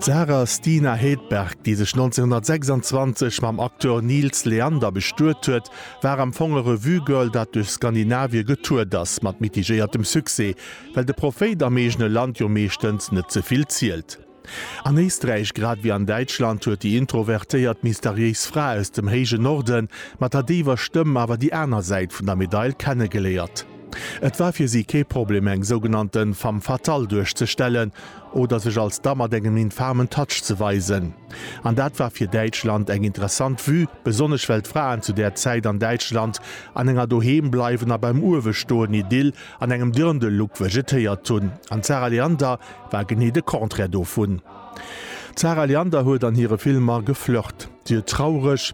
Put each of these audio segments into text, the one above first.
D'Sarah Stina Hedberg, déi sech 1926 mam Acteur Nils Leander bestuet huet, war am Fong e Revue-Girl, dat duerch Skandinavië getourt ass, mat mitigéiertem Succès, well de Prophéit am eegene Land jo meeschtens net ze vill zielt. An Éisträich, grad ewéi an Däitschland, huet déi introvertéiert, mysteriéis Fra aus dem héijen Norden mat der déiwer Stëmm awer déi aner Säit vun der Medail kennegeléiert. Et war fir si kee Problem eng sougenannte femme fatale duerchzestellen oder sech als Da mat engem infamen Touch ze weisen. An dat war fir Däitschland eng interessant Vue, besonnesch well d'Fraen zu där Zäit an Däitschland an enger doheem bleiwen a beim uewe stoen Idyll an engem Dirndl-Look vegetéiert hunn. An d'Sarah Leander war genee de Contraire dovun. D'Sarah Leander huet an hire Filmer geflirt. Si huet traureg.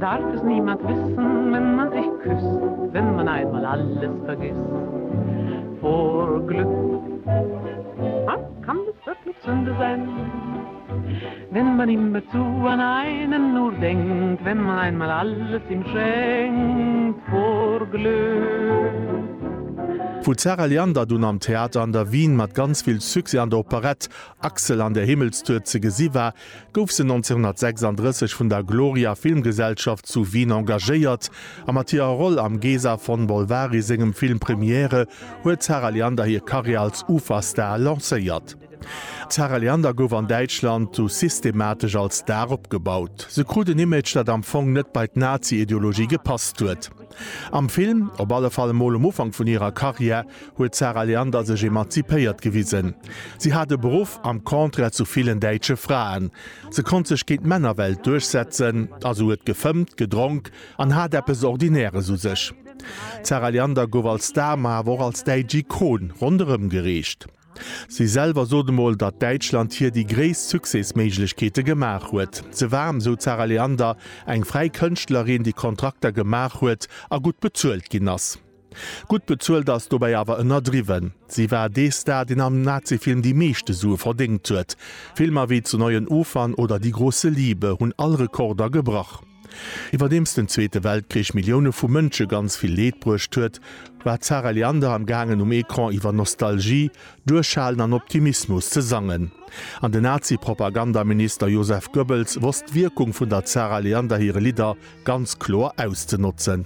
Darf es niemand wissen, wenn man sich küsst, wenn man einmal alles vergisst vor Glück? Dann kann es wirklich Sünde sein, wenn man immerzu an einen nur denkt, wenn man einmal alles ihm schenkt vor Glück. Wou d'Sarah Leander dunn am Theater an der Wien mat ganz vill Succès an der Operette Axel an der Himmelstour ze gesi war, gouf se 1936 vun der Gloria Filmgesellschaft zu Wien engagéiert, a mat hirer Roll am Gesa von Bolvari sengem Film Premiere huet d'Sarah Leander hir Karriär als Uferstar lancéiert. D'Sarah Leander gouf an Däitschland du systematesch als Star opgebaut. Se krut en Image, dat am Fong net bei d'Nazi-Ideologie gepasst huet. Am Film, op alle Fall emol um Ufank vun hirer Karriär, huet d'Sarah Leander sech emanzipéiert gewisen. Si hat e Beruff, am Contraire zu villen däitsche Fraen. Se konnt sech géint d'Männerwelt duerchsetzen, also huet gefëmmt, gedronk an hat eppes Ordinäres u sech. D'Sarah Leander gouf als Star, ma awer och als däitsch Ikon ronderëmgereecht. Si selwer sot emol, datt Däitschland hir déi gréisst Succesméiglechkeete gemaach huet. Ze waarm, sou d'Sarah Leander, eng fräi Kënschtlerin, déi Kontrakter gemaach huet a gutt bezuelt ginn ass. Gutt bezuelt ass dobäi awer ënnerdriwwen. Si war dee Star, deen am Nazifilm déi meeschte Sue verdéngt huet. Filmer wéi Zu neuen Ufern oder Die große Liebe hunn all Rekorder gebrach. Iwwerdeems den Zweete Weltkrich Millioune vu Mënsche ganz vill Leed bruecht huet, war d'Sarah Leander am gaangen um Ecran iwwer Nostalgie, Duerchhalen an Optimismus ze sangen. An den Nazi-Propagandaminister Joseph Goebbels wosst d'Wierkung vun der Zarah Leander hire Lidder ganz kloer auszenotzen.